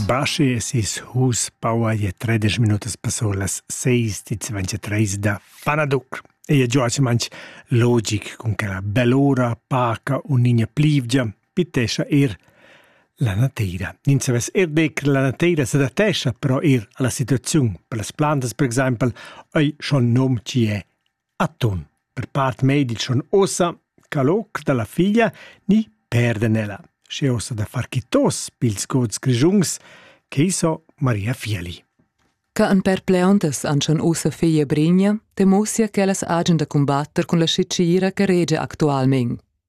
Baschi e sis hus paua je tredisch minutas passò las seis di ventetreis da Fanaduc. E je giò manch logic cun quella bell'ora paca un niña plivgia pitescha er la nateira. Nin savess er de che la nateira s'adattescha però er alla situaziun, per las plantas per exaimpel, ei schon nom ci è Atun. Per part medic schon ossa ch'al hoc da la figlia ni perden ella, sche ossa da far quitos pils gods grischuns che so Maria Fieli. Ca an perpleontas an schon ussa figlia Brigna temussia ch'ellas hagen da cumbatter cun la schitgira che regia actualmein.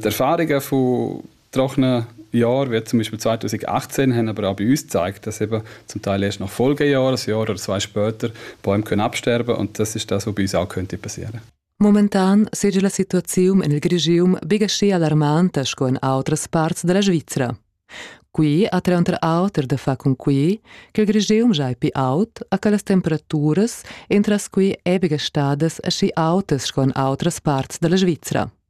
Die Erfahrungen von trockenen Jahren, wie zum Beispiel 2018, haben aber auch bei uns gezeigt, dass eben zum Teil erst nach Folgejahr, ein Jahr oder zwei später, Bäume können absterben und das ist das, was bei uns auch könnte passieren Momentan sei la situazione nel regime big ascì allarmante sco in outras parts della Svizzera. Qui ha tranter auter da fa con qui che il regime già è più aut a che le temperature entras qui è biga stadas asci autes sco in outras parts della Svizzera.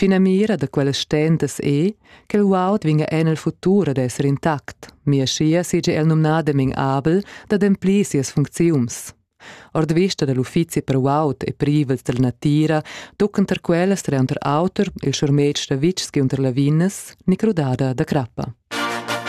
Finamira da quellas stentas è, ch'el uaud vinga en el futur ad esser intact, mia schia seigi el numnadamein abel d'ademplir sias funcziuns. Ord vista dal uffizi per uaut e privels della natira tuccen tar quellas tranter auter il schurmetg da vitgs giunter Lavinas, ni crudada da crappa.